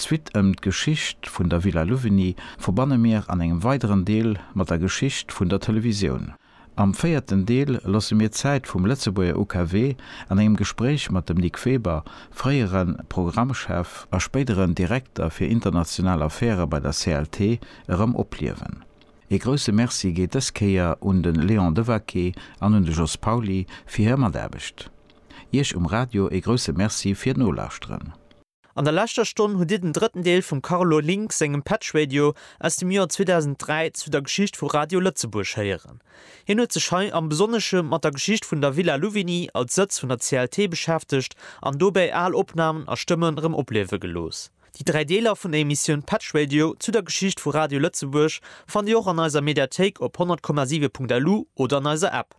D'Suite ëm d'Geschicht vun der Villa Louvigny verbanne mir an engem weideren Deel mat der Geschicht vun der Televisioun. Am véierten Deel loosse mir d'Zäit vum Lëtzebuerger UKW an engem Gespréich mat dem Nic Weber, fréiere Programmchef a spéideren Direkter fir international Affäre bei der CLT, erëm opliewen. Ee grousse Merci geet dës Kéier un de Léon Devaquet an un de Jos Pauly fir hir Mataarbecht. Iech um Radio ee grousse Merci fir d'Nolauschteren. An der leschter Stonn hutt Dir den drëtten Deel vum Carlo Link sengem Patch Radio aus dem Joer 2003 zu der Geschicht vu Radio Lëtzebuerg héieren. Hien huet sech hei am Besonnesche mat der Geschicht vun der Villa Louvigny als Sëtz vun der CLT beschäftegt an dobäi al Opnamen a Stëmmen erëm opliewe gelooss. Déi dräi Deeler vun der Emissioun Patch Radio zu der Geschicht vu Radio Lëtzebuerg fannt Dir och an eiser Mediathéik op 100,7.lu oder an eiser App.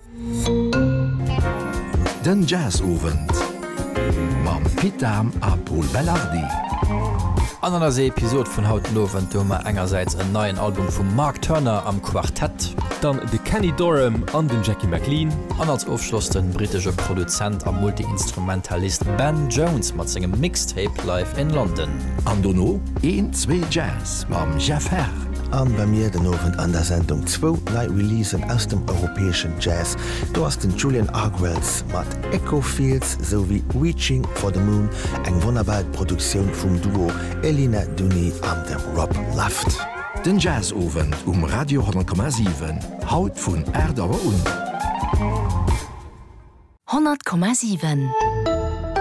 Den Jazzowend mam Pit Dahm a Pol Belardi. An an eiser Episod vun haut den Owend hu mer engersäits en neien Album vum Mark Turner am Quartett. Dann de Kenny Dorham an den Jackie McLean. An als Ofschloss den britesche Produzent a Multi-Instrumentalist Ben Jones mat sengem Mixtape Live in London. An dono een, zwee Jazz Mam Jeff Herr an bei mir den Owend an der Sendung zwou nei Releasen aus dem europäeschen Jazz. Do ass den Julian Argwells mat Echo Fields sou wéi Reaching for the Moon, eng wonnerbar Produktioun vum Duo Elina Duni an dem Rob Luft. Den Jazzowend um Radio 10,7, haut vun 8 Auer un. 100,7.